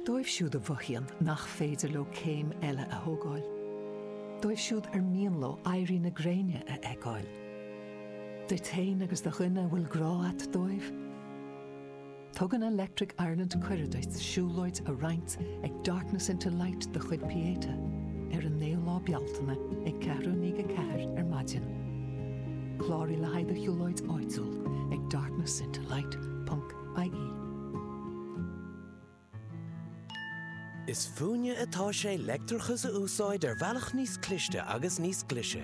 Dóibh siúd a mhothaíonn nach féidir leo céim eile a thógáil, dóibh siúd ar mian leo éirí na gréine a fheiceáil, duit féin agus do dhuine a bhfuil grá a't dóibh, Tugann Electric Ireland cuireadh duit siúlóid a roinnt ag Darkness into Light de chuid Pieta ar an 9ú lá Bealtaine ag ceathrú i ndiaidh a ceathair ar maidin. Cláraigh le haghaidh do shiúlóid áitiúil ag darknessintolight.ie. Is fúinne atá sé leictreachas a úsáid ar bhealach níos cliste agus níos glaise.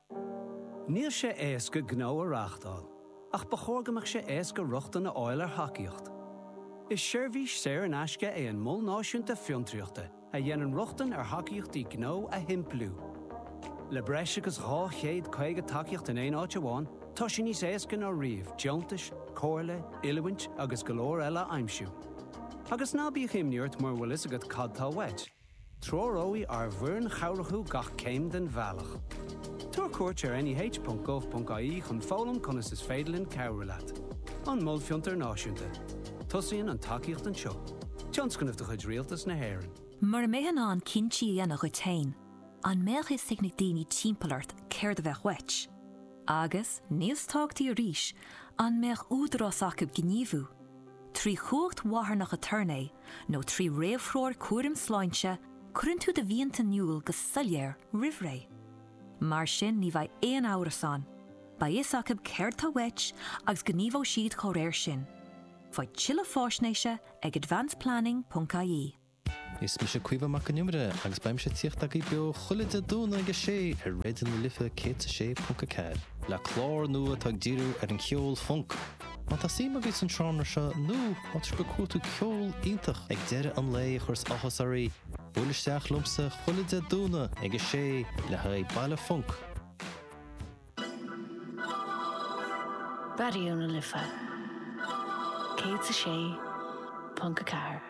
Níl sé éasca gnó a reáchtáil, ach ba chóir go mbeadh sé éasca rochtain a fháil ar thacaíocht. Is seirbhís saor in aisce é an Mol Náisiúnta Fiontraíochta a dhéanann rochtain ar thacaíochtaí gnó a shimpliú. Le breis agus 250 tacaíocht in aon áit amháin, tá sé níos éasca ná riamh deontais, comhairle, oiliúint agus go leor eile a aimsiú. Agus ná bíodh imní ort mura bhfuil fhios agat cad tá uait. Treoróidh ár bhfoireann chabhrach thú gach céim den bhealach. Tabhair cuairt ar neh.gov.ie chun foghlaim conas is féidir linn cabhrú leat. An Mol Fiontair Náisiúnta. Tosaíonn an tacaíocht anseo. Tionscnamh de chuid Rialtas na hÉireann. Mura mbeifeá in ann cinntí a dhéanamh dhuit féin, an mbeadh fhios ag na daoine timpeall ort céard a bheadh uait? Agus, níos tábhachtaí arís, an mbeadh údarás acu gníomhú? Trí chumhacht mharthanach aturnae nó trí réamhthreoir cúraim sláinte, cuireann tú do mhianta in iúl go soiléir roimh ré. Mar sin ní bheidh aon amhras ann, beidh fhios acu céard tá uait agus gníomhóidh siad dá réir sin. Faigh tuilleadh fáisnéise ag advanceplanning.ie. Is mise Caoimhe Mac an Iomaire agus beidh mise ag tíocht agaibh beo chuile Dé Domhnaigh ag 6 ar Raidió na Life 106.4, le clár nua atá ag díriú ar an cheol func, má tá suim agaibh san seánra seo nó má tá sibh ag cuartú ceol iontach ag deireadh an lae a chuireas áthas oraibh, buail isteach liomsa chuile Dé Domhnaigh ag 6 le haghaidh baile func. Raidió na Life 106.4.